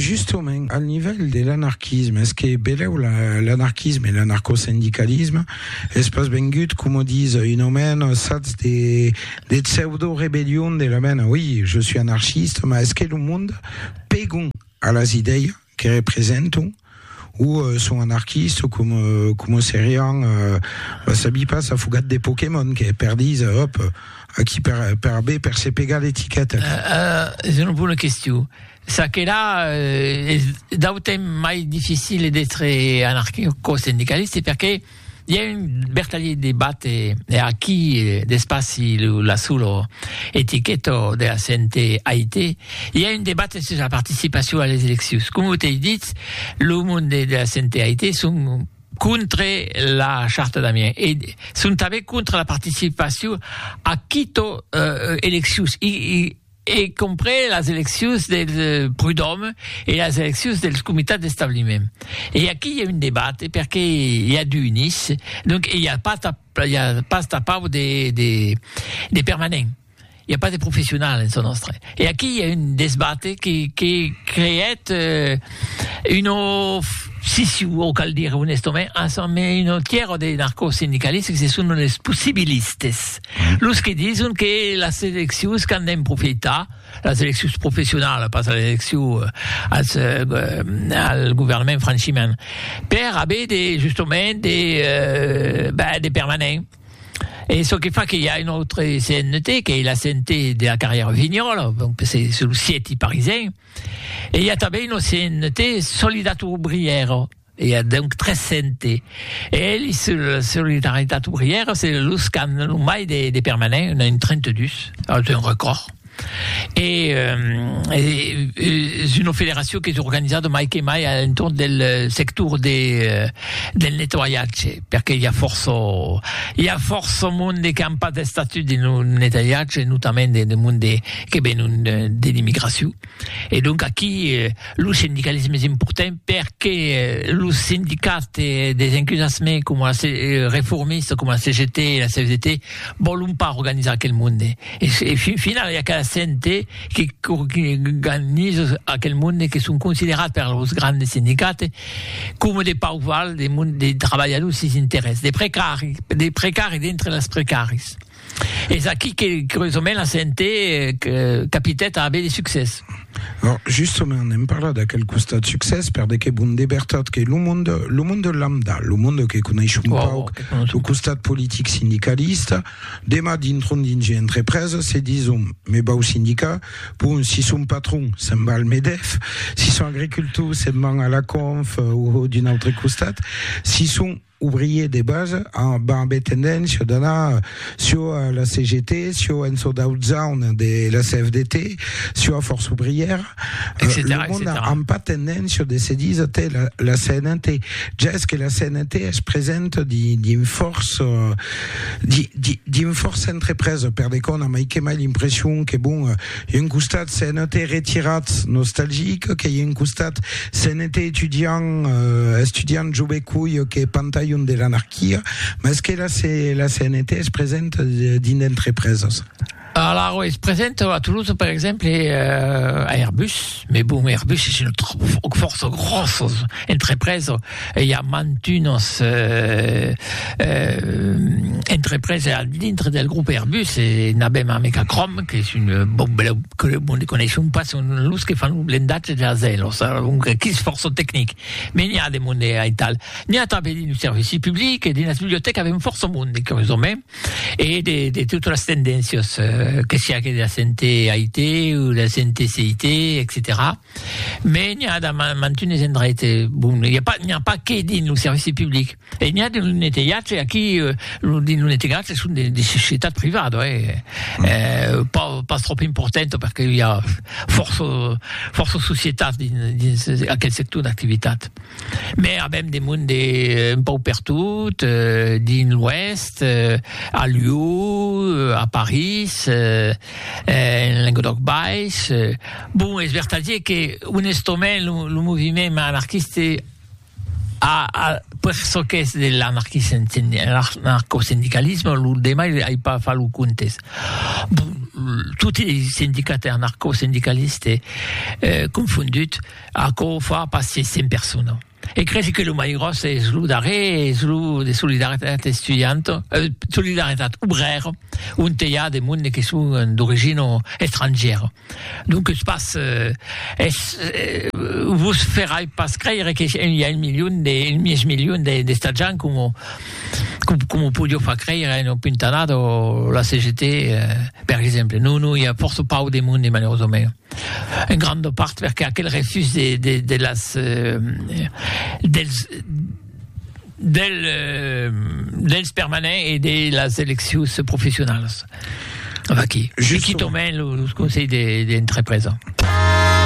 Justament, al nivèl de l'anarquisme, es que belèu l'anarquisme e l'anarcosindicalisme es pas vengut, coma ditz un omèn, sats de pseudo-rebellion de la mena, oi, je suis anarchiste, mas es que lo monde pegon a las idèias que representam o son anarquista o com, com o serián va sabi pas afogat de Pokémon que per dis hop aquí per, per bé per se pegar l'etiqueta uh, uh, és una bona qüestió ça que là uh, és d'autant mai difícil d'être anarquista o sindicalista perquè I a un bertalhit de bate e aquí d'espaci lo la sulo etiqueto de la CNT aite i a un debate sus la participacion a les eleccions. Com o t'ei dit, lo monde de la CNT aite son contre la charta d'Amiens e son tanben contre la participacion a quito eleccions. I, i, e comprés las eleccions del Prud'Òme e las eleccions dels comitats d'establiment. E aquí i a un debate perque i a du unis, donc i a pas i a pas tapau de de de permanent, i a pas de professional en çò nòstre. E aquí i a un desbate que que creèt un of siciu o cal dire onestament, un autre tièr de narcosindicalistes que se son los possibilistes. Los que dison que las eleccions qu'an d'en profitar, las eleccions professionalas, pas las eleccions als, eh, al governament franchiment, per aver de, justament, de, eh, ben, de permanent. E çò que fa que i a un autre CNT, qu'ei la CNT de la carrièra Vignola, donc se sul sièti parisenc, e i a tanben un autre CNT, Solidat Obrièra. I a donc 300 eèlhs sul Solidaritat Obrièra, se los qu'an lo mai de permanents, un a un 32, es un recòrd. E es una federacion qu'es organizada mai que mai a l'entorn del sector del nettoiatge, perque i a fòrça i a fòrça monde qu'an pas d'estatut dins lo nettoiatge, notament de monde que venon de l'immigracion. E donc aquí lo sindicalisme es important perque los sindicats des encusassement coma la reformista coma la CGT e la CFDT vòlon pas organizar aquel monde e fin finala i a cada cente que organiza aquel monde que son considerats per los grandes sindicats coma de pauval de trabalhadors sens interès de precari dintre las precaris. Es aquí que, curiosament, la CNT capitèt a aver de succès. Or, justament, n'èm parlat d'aquel costat succès, per de que bon de vertat que lo monde, lo monde lambda, lo monde que coneis un pauc lo costat politic sindicalista, demà dintron dins ua entrepresa se dison, me vau sindicar, bon, si son patron, se'n va al Medef, si son agricultor, se'n van a la Conf o d'un autre costat, si son. ouvrier de base amb ambé tendéncia d'anar sieu a la CGT, sieu en çò d'aut zaun de la CFDT, sieu a Força Ouvrièra, lo mond a amb pas tendéncia de se díser te la la CNT, ja es que la CNT es presenta di dins fòrça di di dins fòrça entrepresa per de qu'òna mai que mai l'impression que bon Ieu un costat se'n ète retirat nostalgic, que ieu un costat se'n ète etudiant, estudiant jove cuelh que pantalhon de l'anarquia, mès que la se, la CNT es present dins d'entrepreses. Alara es present a Toulouse per exemple a Airbus, mès bon Airbus es una fòrça gròssa entrepresa, Ei a mantunas entreprese al dintre del grop Airbus e n'avem amec a Crom, qu'es un bon beleu club onde coneishon pas son los que fan lo blendatge de las aelos, adonc que's fòrça tecnic. Me n'i a de monde aital. N'i a tanben dins lo servici public e dins las bibliotècas avem fòrça monde, curiosament, e de de totas las tendéncias, que siá que de la CNT, AIT, o de la CNT, CIT, etcetèra. Mais n'i a damb mantunes endraite, bon, n'i a pas, n'i a pas que dins lo servici public, e n'i a dins lo netelhatge, aquí, lo, dins lo netelhatge son de, de societat privada, hè, eh, pas, pas tròp importanta, perque i a fòrça, fòrça societats dins, dins aquel sector d'activitat. Mais avèm de monde un pauc pertot, dins l'Oèst, a Lió, a París, En Lenguedòc Baish, bon, es vertadier que onestament lo moviment anarquiste a per çò qu'es de l'anarcosindicalisme, lo demai ai pas fach lo comptes, bon, toti es sindicats e anarcosindicalistes confondut, aquò fa pas 600 personas. E cresi que lo mai gròs es lo darrer, es lo de solidaritat estudianta, eh, solidaritat obrèra, onte i a de monde que son d'origina estrangièra. Donques pas, eh, es, eh, vos ferai pas creire que i a un milion de, un mièg milion de, d'esta gent coma, coma o podiá far creire una puntanada la CGT, eh, per exemple. Non, non, i a fòrça pauc de monde, malerosament. En granda part perque aquel refús de de de las dels del dels permanents e de las eleccions professionalas. Vaqui, se quitòmen los conselhs de de entrepresa.